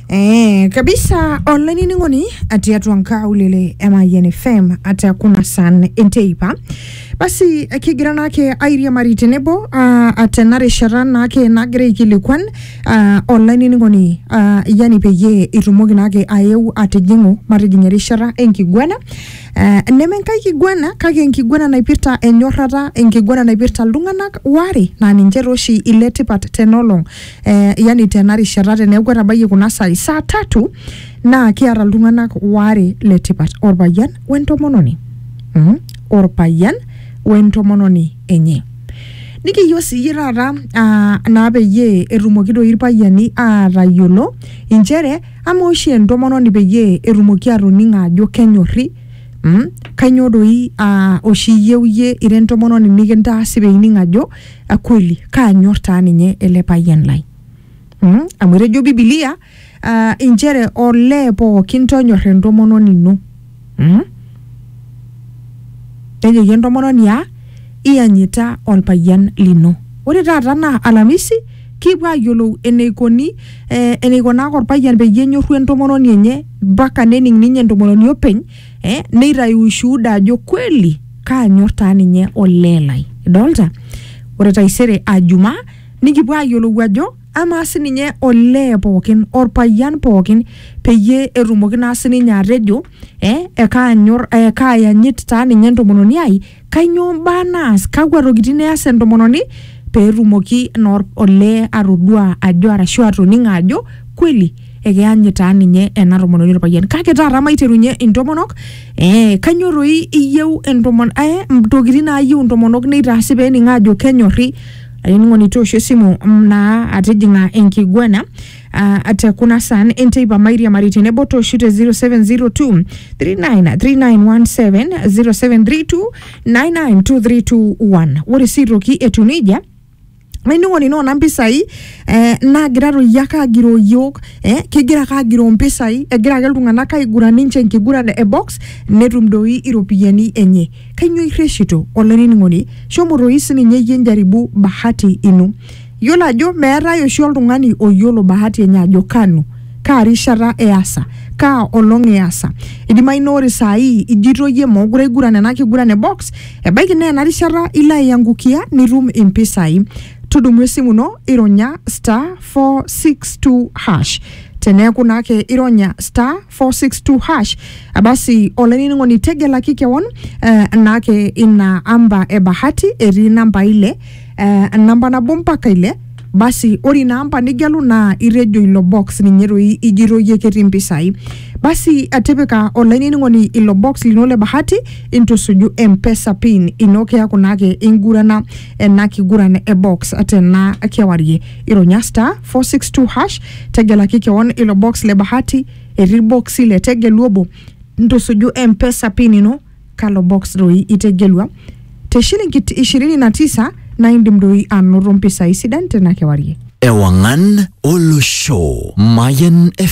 Eh, kabisa online ningoni ati atu ankaulele MIN FM ati akuna san enteipa basi kigira nake airia mari tenebo uh, ate narishata nake nagira aikilikwan uh, online ningoni uh, yani peyie itumoki nake ayeu atijing'u matijing erishata enkiguana uh, neme nkai kiguana kake enkiguana naipirta enyorrata enkiguana naipirta iltung'anak ware naa ninche tooshi ile tipat tenolong eh, yani tena rishata teneeku etabayie kuna saai saa tatu naa kiata iltung'anak waare le tipat orpayian wentomononi mm? orpayian wentomononi enye nikiyieu siyie taata ah, naa peyie etumoki doi irpayiani aatayiolo inchere ama oshi entomononi peyie etumoki atoning ajo kenyorri mm? kainyoo doi ah, oshi iyieu iyie ira entomononi nikintaasi peining ajo akweli kaanyor taa ninye ele payian lai mm? amu etejo bibilia uh, inchere olee pookin tonyor entomononi ino mm? nejoki entomononi a iyanyita olpayian lino ore taata naa alamisi kipuo ayiolou eneikoni eh, eneikonaka olpayian peyie enyorru entomononi enye mpaka nening ninye entomononi openy eh, neitayu ushuhuda ajo kweli kaanyor taa ninye olee lai idolta ore taisere ajuma nikipuo ayiolou ajo amaa sininye olee pookin orpayian pookin peyie etumoki naa sininye atejo eh, ekaanyor eh, kaayanyit taa ninye entomononi ai kainyoo mbaa naas kakwa tokitin eas entomononi peetumoki naa olee atodua ajo arashu atoning'o ajo kweli ekeany taa ninye ena tomononi orpayian kake taata maiterunye intomonok eh, kanyoo toi iyieu entomon eh, ntokitin naayieu intomonok neitaasi pening aajo kenyorri ainining'oni toosho esimu mm, naa atijing'a enkiguana ah, te kuna saan enteipa mairiamari tenebo tooshu te 0702 393917 0732 99231 ore sii aitoki etiu nejia nainining'oni naa ona mpisai eh, naagira toi ake agiroo yiok eh, kegira ake agiroo mpisai egira ake iltung'anak aiguran ninche enkiguran e box netum doi iropiyiani enye kainyoo irreshito olainining'oni shomo toi sininye iyie njaribu bahati ino yiolo ajo meetae oshi oltung'ani oyiolo bahati enye ajo kanu kaa rishata easa kaa olong easa idimayu naa ore saai ijito iyie mookure aiguran ena kiguran e box Ebaiki naa ena rishata ilo aiangukia nitum impisai. Tudumu esimu ino ironya star 462 hash. Teneeku naa ake ironya star 462 hash, basi olainining'oni tegelaki kewon eh, naake ina amba e bahati etii inambai ile eh, namba nabo mpaka ile basi ore ina amba nigelu naa itejo ilo box ninye doi ijito iyie ketii mpisai basi eh, tipika olainining'oni ilo box lino le bahati intusuju mpesa pin ino keaku naake ingurana ena kiguran e box tena kewarie ironya star 462 hash tegelaki kewon ilo box le bahati etii irboksi le tegelu obo ntusuju mpesa pin ino kalo box doi itegelua te shilingi 29 na indim doi anoto mpisai sidan tena kewarie. Ewangan olosho. Mayan FM.